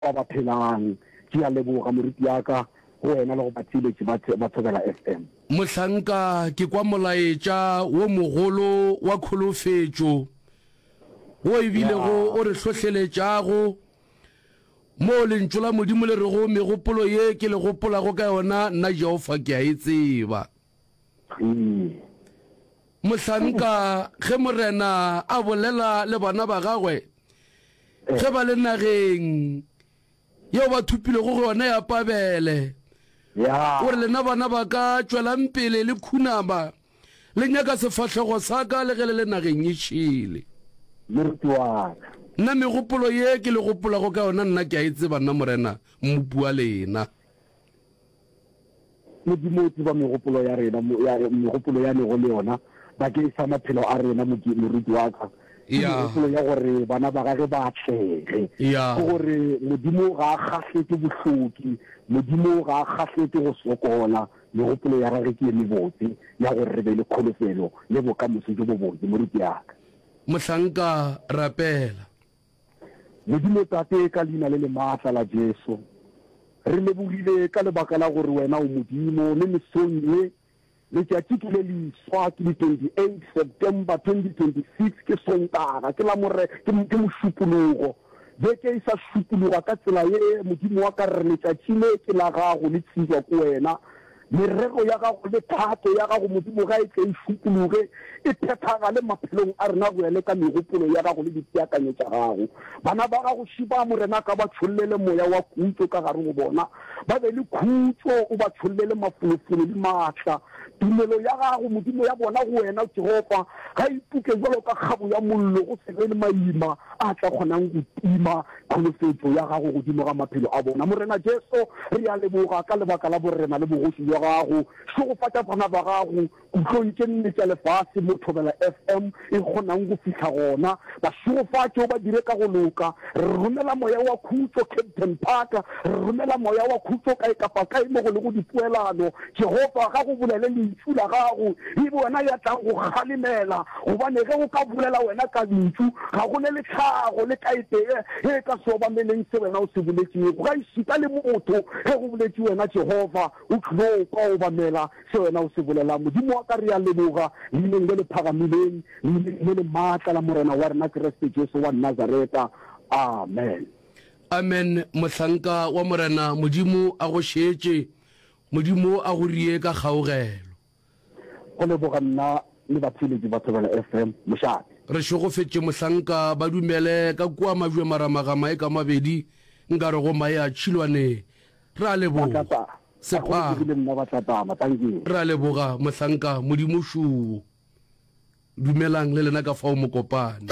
Ba ba phelang, ke a leboga morutiaka, go wena le go batheeletši ba ba Thobela FM. Mohlanka ke kwa molaetša wo mogolo wa kholofetšo wo e bilego o re hlohleletšago, moo Lentšu la Modimo le rego, Megopolo ye ke le gopolago ka yona, nna Jehofa ke a e tseba. Iye. Mohlanka, ge Morena a bolela le bana ba Gagwe, ge ba le nageng yeo ba thopilwego go yona ya Pabele, Ya. O re, Lena bana ba ka, tšwelang pele le khunama, le nyaka sefahlego sa ka le ge le le nageng ye šele. Moruti wa ka. Nna megopolo ye ke le gopolago ka yona nna ke a e tseba, nna Morena, Mmopi wa lena. Modimo o tseba megopolo ya rena, megopolo ya lego le yona bakeng sa maphelo a rena, moruti wa ka. Ke megopolo ya gore bana ba gage ba atlege. Ke gore Modimo ga a kgahlwe ke bohloki, Modimo ga a kgahlwe ke go sokola. Megopolo ya gage ke ye mebotse ya gore re be le kholofelo le bokamoso jo bobotse, moruti wa ka. Mohlanka, rapela. Modimo Tate, ka Leina le le maatla la Jesu, re lebogile ka lebaka la gore Wena o Modimo, le mesong ye, letšatši ke le leswa, ke di 28 September 2026, ke Sontaga, ke la more, ke, ke Mošupologo. Beke e sa šupologa ka tsela ye, Modimo wa ka, re re letšatši le ke la Gago, le tsebjwa ke Wena. Merero ya gago le thato ya gago, Modimo, ga e tle e šupologe, e phethagale maphelong a rena, go ya le ka megopolo ya gago le dipeakanyo tša gago. Bana ba gago šiba, Morena, ka ba tšhollele moya wa khutšo ka gare go bona, ba be le khutšo, o ba tšhollele mafolofolo le maatla. Tumelo ya gago, Modimo, ya bona go wena, Jehofa, ga e ipuke bjalo ka kgabo ya mollo, go se be le maima a tla kgonang go tima Kholofetšo ya Gago godimo ga maphelo a bona. Morena Jesu, re a leboga ka lebaka la Borena le Bogoši bja Gago. Šegofatša bana ba Gago kutlong tše nne tša lefase mo Thobela FM e kgonang go fihla gona. Ba šegofatše, o ba dire ka go loka. Re romela Moya wa Khutšo Captain Parker. Re romela Moya wa Khutšo kae kapa kae mo go lego dipoelano Jehofa, ga go bolele lentšu la gago, e be wena ya tlago go kgalemela, gobane ge o ka bolela wena ka lentšu, ga go ne le tlhago le kaetee e e ka se obameleng se wena o se boletšego. Gaešita le motho, ge go boletše wena, Jehofa, o tlilo kwa obamela se wena o se bolelang. Modimo wa ka, re a leboga leineng le le phagamileng, leineng le le maatla la Morena wa rena Kriste Jesu wa Nazareta. Amen. Amen, mohlanka wa Morena. Modimo a go šeetše. Modimo a go rie ka kgaogelo. Go leboga nna le batheeletši ba Thobela FM mošate. Re šogofetše mohlanka ba dumele ka kua majwe maramaga mae ka mabedi nkare go mae a tšhilwane. Re a leboga. Sepang. Re a leboga mohlanka Modimo šuu. Dumelang le lena ka fao mokopane.